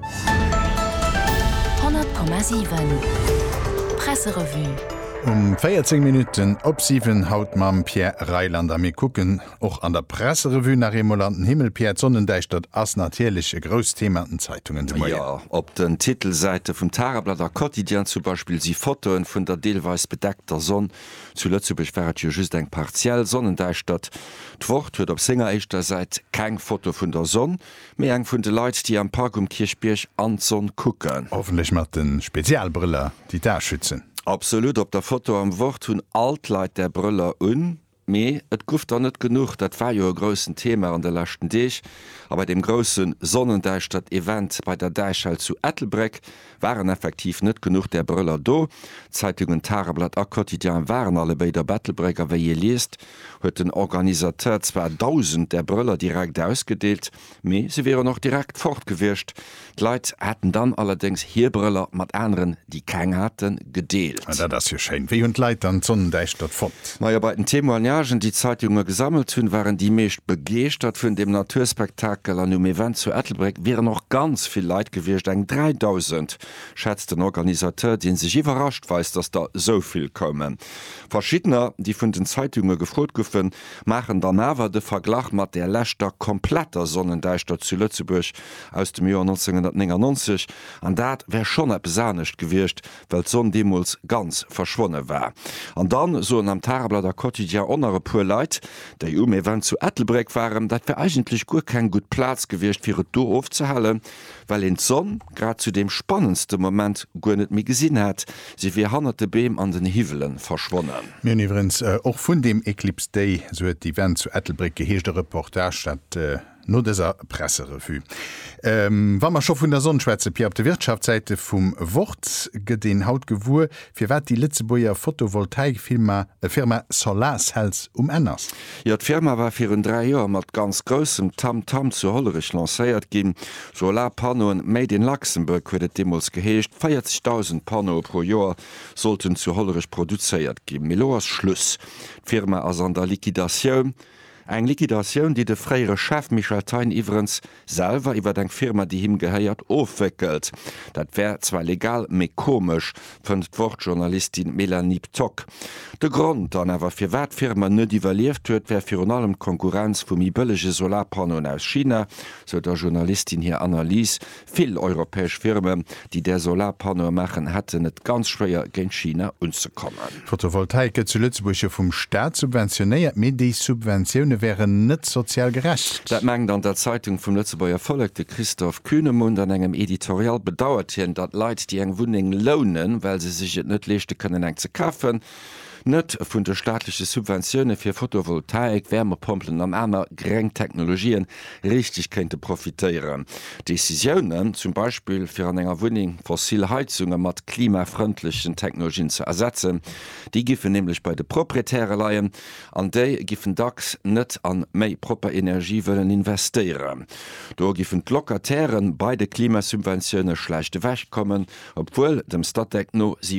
100,7 Presserevue Um 14 Minutten op 7 haut mam Pierre Reyland a mir kucken och an der Presserevue nach eemol an den Himmel. Pierre, d'Sonnendäischtert ass natierlech e grousst Thema an den Zeitungen de Moien. Jo, op den Titelsäite vum Tageblatt a Quotidien zum Beispill si Fotoe vun der deelweis bedeckter Sonn. Zu Lëtzebuerg war et jo just eng partiell Sonnendäischtert. D'Wort huet op senger éischter Säit keng Foto vun der Sonn. Mee eng vun de Leit déi am Park um Kierchbierg an d'Sonn kucken. Hoffentlech mat den Spezialbrëller déi d'Aa schützen. Absolut, op der Foto am Wort hunn all d'Leit där Brëller un. Mee et guff der net genuch, dat war jo e groussen Thema an de leschten Deeg. A bei deem groussen Sonnendäischtert Event bei der Däichhal zu Ettelbréck Waren effektiv net genuch där Brëller do? D'Zeitungen Tageblatt a Quotidien waren allebéid op Ettelbréck a wéi ee liest, huet den Organisateur zwar dausend där Brëller direkt ausgedeelt, mee se wieren och direkt fort gewiescht. D'Leit hätten dann allerdéngs hir Brëller mat aneren, déi keng haten, gedeelt. Dat ass jo schéin. Wéi hunn d'Leit dann d'Sonnendäischtert fonnt? Majo bei den Témoignagen déi d'Zeitunge gesammelt hunn, waren déi meescht begeeschtert vun dem Naturspektakel an um Event zu Ettelbréck wieren och ganz vill Leit gewiescht, eng 3000 schätzt den Organisateur, dee sech iwwerrascht weist, datt der esou vill koumen. Verschiddener déi vun den Zeitunge gefrot guffen, maachen dann awer de Verglach mat der leschter kompletter Sonnendäischtert zu Lëtzebuerg aus dem Joer 1999 an dat wär schonn eppes anescht gewiescht well d'Sonn deemools ganz verschwonne war. An dann soen am Tageblatt a Quotidien och nach e puer Leit, déi um Event zu Ettelbréck waren, dat wär eigentlech guer keng gutt Plaz gewiescht, fir et do ofzehalen, well een d'Sonn grad zu deem spannendste Moment guer net méi gesinn hätt, se wier hannert de Beem an den Hiwwele verschwonnen. Mir hunn iwwerens och vun deem Eclipse Day, sou huet d'Event zu Ettelbréck geheescht, e Reportage. Dat No dëser Presserevue, wa mer scho vun der Sonn schwätzen, Pia, op de Wirtschaftssäite vum Wort gëtt een haut gewuer, firwat déi Lëtzebuerger Photovoltaik-Firma Solarcells um Enn ass. Jo, d'Firma war virun dräi Joer mat ganz groussem Tamtam zu Hollerech lancéiert ginn. Solarpannoen made in Luxembourg huet et deemools geheescht. 40.000 Pannoe pro Joer sollten zu Hollerech produzéiert ginn. Mee elo ass Schluss, d'Firma ass an der Liquidatioun. Eng Liquidatioun, déi de fréiere Chef Michel Thein iwwerens selwer iwwert eng Firma, déi him gehéiert, ofwéckelt. Dat wär zwar legal, mee komesch, fënnt d'Wort-Journalistin Mélanie Ptock. De Grond dann awer, firwat d'Firma net iwwerlieft huet, wär virun allem d'Konkurrenz vu méi bëllege Solarpannoen aus China, sou der Journalistin hir Analys, Vill europäesch Firmen, déi där Solarpanneaue maachen, hätten et ganz schwéier, géint China unzekommen. D'Fotovoltaik gëtt zu Lëtzebuerg jo vum Staat subventionéiert, mee déi Subventioune wären net sozial gerecht. Dat mengt an der Zeitung vum Lëtzebuerger Vollek de Christoph Kühnemund. An engem Editorial bedauert hien, datt Leit, déi eng Wunneng lounen, well se sech et net leeschte kënnen eng ze kafen, Net vun de staatleche Subventioune fir Fotovoltaik, Wärmepompelen an aner gréng Technologië richteg kéinte profitéieren. Decisiounen, zum Beispill fir an enger Wunneng fossil Heizunge mat klimafrëndlechen Technologien ze ersetzen, déi giffen nämlech bei de Proprietäre leien an déi giffen dacks net a méi propper Energie wëllen investéieren. Do giffen d'Locataire bei de Klimasubventioune schlecht ewechkommen, obwuel dem Statec no 70.